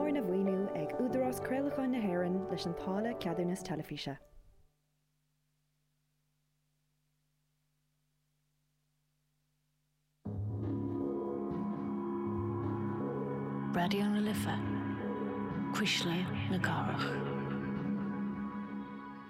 Arna mhaoiniú ag Údarás Craolacháin na hÉireann leis an táille ceadúnas teilifíse. Raidió na Life, Cuisle na Cathrach.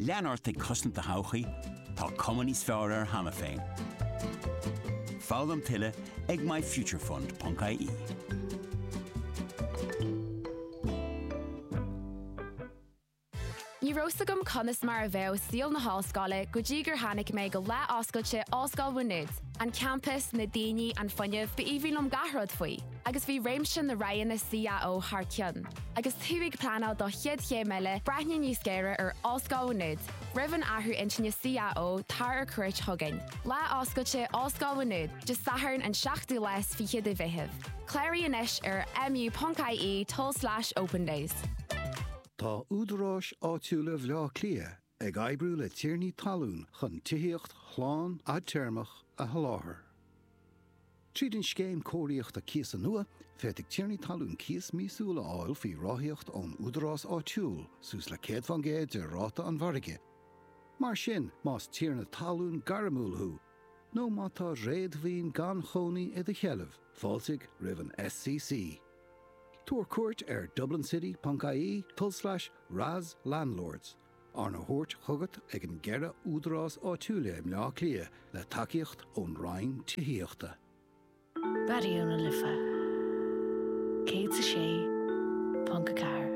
Lean ort ag cosaint do thodhchaí, tá cuma níos fearr air cheana féin. Foghlaim tuilleadh ag myfuturefund.ie. Ní raibh 's agam conas mar a bheadh saol na hollscoile go dtí gur tháinig mé go lá oscailte Ollscoil Mhá Nuad. An campas, na daoine, an fuinneamh, ba aoibhinn liom gach rud faoi. agus bhí réimse na roghanna CAO thar cionn. Agus tú ag pleanáil do chéad chéim eile, breathnaigh níos géire ar Ollscoil Mhá Nuad. Roimh an athrú intinne CAO, tar ar cuairt chugainn. Lá Oscailte Ollscoil Mhá Nuad, Dé Sathairn an 7ú lá is fiche de Mheitheamh. Cláraigh anois ar mu.ie tulslais opendays. Tá údaráis áitiúla Bhleá Cliath ag oibriú le tiarnaí talún chun tithíocht shlán fhadtéarmach a sholáthar. Tríd an scéim cóiríochta cíosa nua, féadfaidh tiarnaí talún cíos míosúil a fháil faoi ráthaíocht ón údarás áitiúil, suas le 100 fán gcéad de ráta an mhargaidh. Mar sin, más tiarna talún gairmiúil thú, nó má tá réadmhaoin gan chónaí i do sheilbh, fáiltigh roimh an SCC. Tabhair cuairt ar dublincity.ie tulslais RAS Landlords, arna thabhairt chugat ag an gceithre údarás áitiúil i mBleá Cliath le tacaíocht ón Roinn Tithíochta. Raidió na Life 106.4.